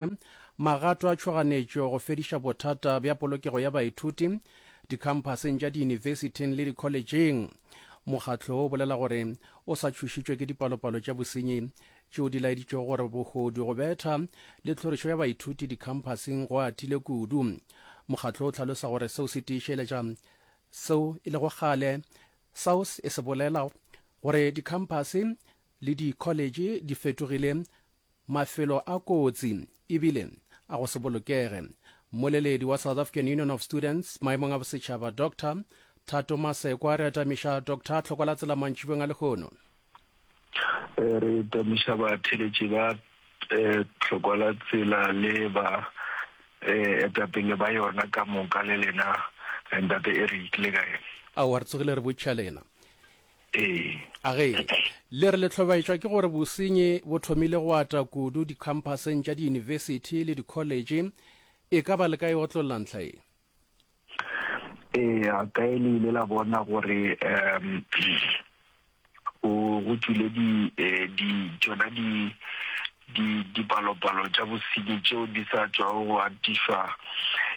Magato a tšhoganetšo go fediša bothata bja polokego ya baithuti dikhamphaseng tša diyunibesithing le dikholetšheng. Mokgatlo wo o bolela gore o sa tšhošitšwe ke dipalopalo tša bosenyi tšeo di laeditšego gore bogodu, go betha le tlhorišo ya baithuti dikhamphaseng go atile kudu. Mokgatlo o hlalosa gore seo se tiišeletša seo e lego kgale SAUS e se bolela gore dikhamphase le dikholetšhe di fetogile Mafelo a kotsi ebile a go se bolokege. Mmoleledi wa South African Union of Students maemong a bosetšhaba Doctor Thato Masekwa re atamiša Doctor Tlhokola Tsela mantšibeng a lehono. Eh, re atamiša batheletši ba eh, Tlhokola Tsela le ba eh, etapele ba yona ka moka le lena eh, Ntate Eric le kae? Aowa re tsogile re botšha lena. A ge le re le hlobaetšwa ke gore bosenyi bo thomile go ata kudu dikhamphaseng tša diyunibesithi le dikholetše, e ka ba le ka e otlolla ntlha ye? Eya, kae le ile la bona gore um go tšwile di eh, di tšona di di dipalopalo tša bosenyi tšeo di sa tšwago go atišwa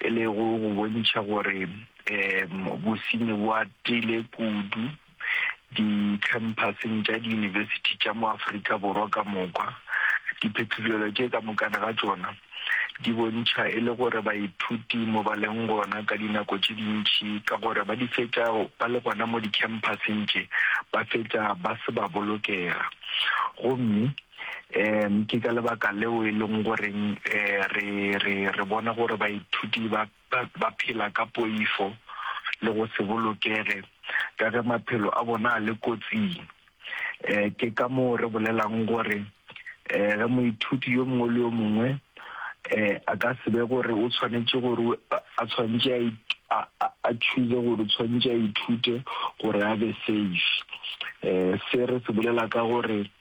e lego go bontšha gore um bosenyi bo atile kudu dikhamphaseng tša diyunibesithi tša mo Afrika Borwa ka moka. Diphetolelo tše ka mokana ga tšona di bontšha e le gore baithuti mo ba leng gona ka dinako tše dintši ka gore ba di fetša ba le gona mo dikhamphaseng tše ba fetša ba se ba bolokega gomme Um ke ka lebaka leo e leng goreng um re re re bona gore baithuti ba ba phela ka poifo le go se bolokege ka ge maphelo a bona a le kotsing. Um ke ka moo re bolelang gore um ge moithuti yo mongwe le yo mongwe um a ka se be gore o tshwanetse gore a tshwanetse a a choose gore tshwanetse a ithute gore a be safe. Um se re se bolela ka gore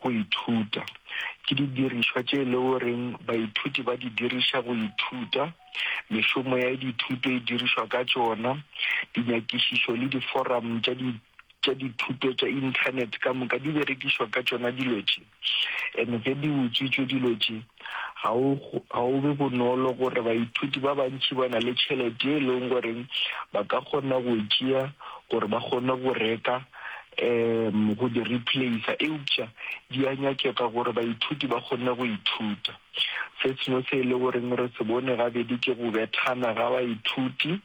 Go ithuta ke didirišwa tše e le goreng baithuti ba di diriša go ithuta. Mešomo ya dithuto e dirišwa ka tšona. Dinyakišišo le diforamo tša di tša dithuto tša inthanete ka moka di berekišwa ka tšona dilo tše. And ge di utswitšwe dilo tše, Ga o, ga o be bonolo gore baithuti ba bantši ba na le tšhelete ye e lego goreng ba ka kgona go e tšea gore ba kgone go reka um go di replacer, eupša di a nyakega gore baithuti ba kgone go ithuta. Se sengwe se e le goreng re se bone gabedi ke go bethana ga baithuti.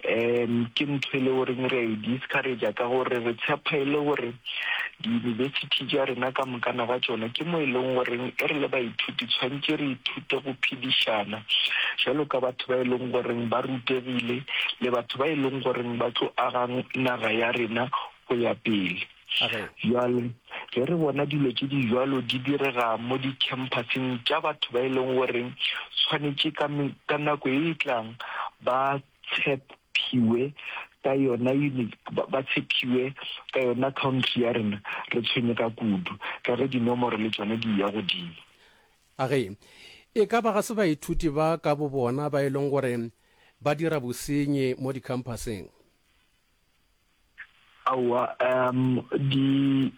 um ke ntho e le goreng re a e discouragea ka gore re tshepa e le gore diyunibesithi ja rena ka mokana ga tšona ke mo e leng goreng e re le baithuti tshwanetse re ithute go phedišana jalo ka batho ba e leng goreng ba rutegile le batho ba e leng goreng ba tlo agang naga ya rena go ya pele a re. Bjale, ge re bona dilo tše di bjalo di direga mo dikhempathing tša batho ba e leng gore swanetše ka, ka nako e e tlang ba tshephiwe ka yona, ba tshephiwe ka yona country ya rena, re tshwenyega kudu ka ge dinomoro le tšona di ya godimo. A re, E ka ba ga se baithuti ba ka bobona ba e leng gore ba dira bosenyi mo dikhempathing? Aowa, um di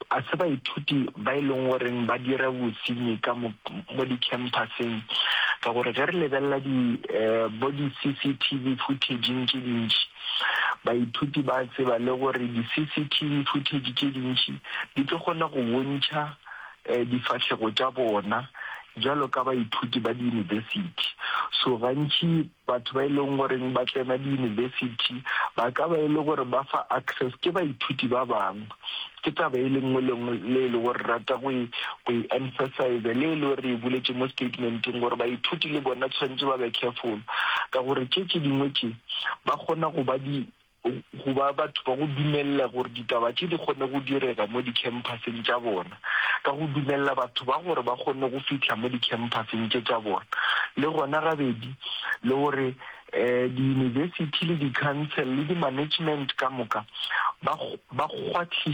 a se baithuti ba e leng goreng ba dira bosenyi ka mo mo di-campuseng ka gore ge re lebelela di eh, bo di-CCTV footageng tše dintši baithuti ba tseba le gore di-CCTV footage tše dintši di tlo kgona go bontšha eh, difahlego tša bona jalo ka baithuti ba di-university so gantši Batho ba e leng goreng ba tsena diyunibesithi ba ka ba e le gore ba fa access ke baithuti ba bangwe. Ke taba e le nngwe le nngwe le e le gore rata go e go e emphasize le e le gore re e buletše mo statementeng gore baithuti le bona tshwanetse ba be careful ka gore tše tše dingwe tše ba kgona go ba di go ba batho ba go dumelela gore ditaba tše di kgone go direga mo dikhempasseng tša bona, ka go dumelela batho ba gore ba kgone go fihla mo dikhempasseng tše tša bona, le gona gabedi, le gore um diyunibesithi le dikhansele le dimanagement ka moka ba ba kgwathiše.